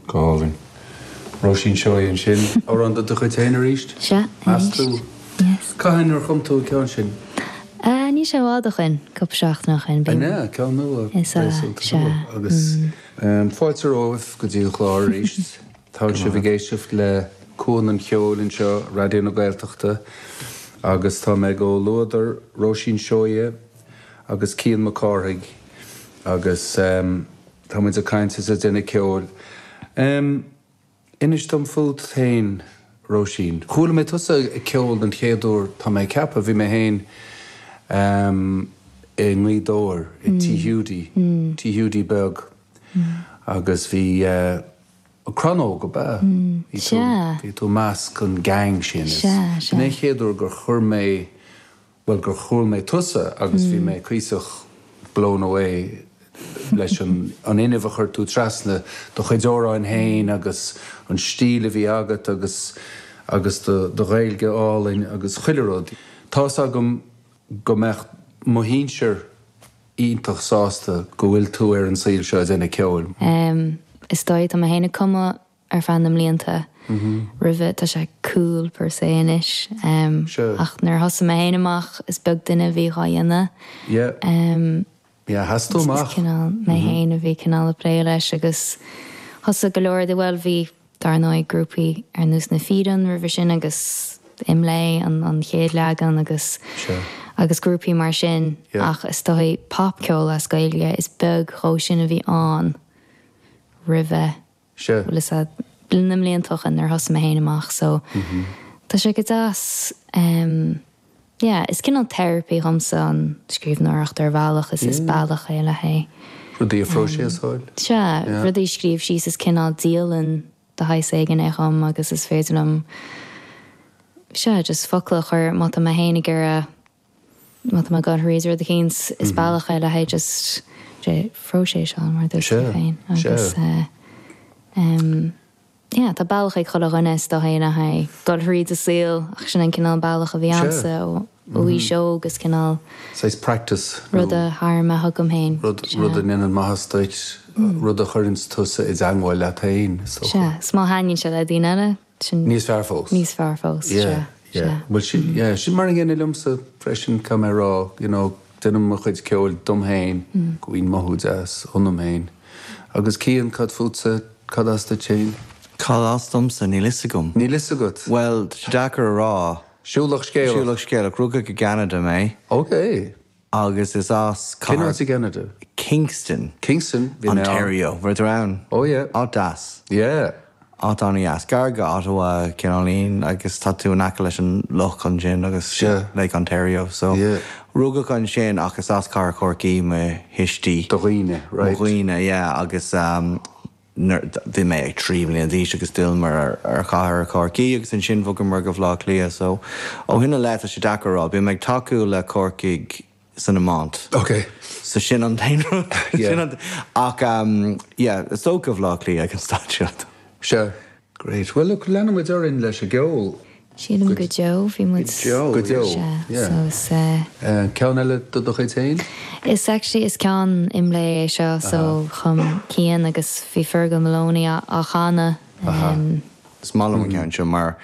Galvin. Róisín Seoighe ansin. Amhrán de do chuid féin arís? Sea, arís. Meas tú? Yes. Cathain ar chum tú an ceann sin? Ah, níl sé i bhfad ó shoin, cúpla seachtaine ó shoin b'in. An ea? Ceann nua Is ea, réasúnta sea. nua agus. Umm, fáilte romhaibh go dtí an chlár arís. Tá sibh ag éisteacht le Cuan an Cheoil anseo, Raidió na Gaeltachta, agus tá mé i gcomhluadar Róisín Seoighe, agus Cian Mac Cárthaigh agus tá muid ag caint is ag déanamh ceoil. Em, inis dom fút féin, Róisín. Chuala mé tusa ag ceol den chéad uair, tá mé ag ceapadh, bhí mé féin, em, i nGaoth Dobhair, i Tigh Hiúdaí, Tigh Hiúdaí Beag agus bhí, eh, Crann Óg, ab ea? Bhí tú, bhí tú i measc an gang sin is b'in é an chéad uair gur chuir mé. bhuel gur chuala mé tusa agus bhí mé cuíosach blown away leis an fhuinneamh a chuir tú trasna, do chuid amhráin féin agus an stíl a bhí agat agus agus do do Ghaeilge álainn agus chuile rud. Tá's agam go mbeadh do shinsir iontach sásta go bhfuil tú ar an saol seo ag déanamh ceoil. Em, is dóigh, tá mé féin ag cumadh ar feadh na mblianta roimhe. Tá sé cool per se anois ach nuair a thosaigh mé féin amach is beag duine a bhí dhá dhéanamh. Is cineál mé féin a bhí cineál ag plé leis agus thosaigh go leor de, bhuel bhí dar ndóigh grúpaí ar nós Na Fíréin roimhe sin agus Imlé an chéad leagan agus agus grúpaí mar sin ach is dóigh pop ceol as Gaeilge is beag dhe sin a bhí ann roimhe. Sure. Bhuel, is ea, na bliantacha nuair thosaigh mé féin amach so tá sé go deas em yeah is cineál therapy dhomsa an scríbhneoireacht ar bhealach is is bealach é le haghaidh rudaí a phróiseáil. Sea, rudaí a scríobh síos is cineál dialann de shaghas éigin é dhom agus is féidir liom sea just focla a chur má tá mé féin ag iarraidh Má tá mé ag dul thrí rud eicínt is bealach é le haghaidh just déileáil leis an saol mar a dúirt tú féin agus ehm yeah tá bealach ag chuile dhuine is dó féin le haghaidh dul thríd a saol ach sin an cineál bealach a bhí agamsa ó aois óg agus cineál saghas practice nó rud a tharm a thugam féin rud rud a dhéanann maitheas duit rud a chuireanns tusa i dteangmháil leat féin is dócha. sea is má thaitníonn sé le daoine eile Sin. Níos fearr fós. Níos fearr fós. Yeah, yeah. Bhuel sin, yeah, sin mar a gcéanna liomsa freisin, caithfidh mé a rá, you know, déanaim mo chuid ceoil dom féin, go mbíonn mothú deas ionam féin. Agus Cian, cad fútsa, cad as duit féin? Cad as domsa? Níl 'fhios agam. Níl 'fhios agat? Bhuel, tá sé deacair a rá. Siúlach scéalach. Siúlach scéalach. Rugadh i gCeanada mé. Okay. Agus is as Cén cathair áit i gCeanada? Kingston, Kingston, bhí mé ann. Ontario. Bhí tú ann? Oh yeah. Áit deas. Yeah. Áit an-dheas. Gar go Ottawa cineál ín agus tá tú in aice leis an loch ansin agus yeah, Yeah. Lake Ontario. So, Yeah. rugadh ansin ach is as cathair Chorcaí mo thuismitheoirí. Do dhaoine, mo right. dhaoine, yeah, agus, um, nuair a bhí mé trí bhliain d'aois agus d'fhilleamar ar chathair Chorcaí agus ansin bhogamar go Bhaile Átha Cliath so ó shin i leith tá sé deacair a rá, bíonn mé ag tacú le Corcaigh san iomáint so sin an t-aon rud, sin an, ach yeah is dócha go Bhaile Átha Cliath ag an staid seo. Great. Bhuel, look, leanfaimid orainn leis an gceol. Sílim go deo, bhí muid. Go deo. Go deo. Sea, yeah. So is uh, Uh, ceann eile de do chuid féin? is actually is ceann IMLÉ é seo, so chum Cian agus bhí Fergal Maloney á, á chanadh. Um, Is maith liom an ceann seo mar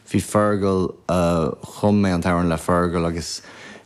bhí Fergal, uh, chum mé an t-amhrán le Fergal agus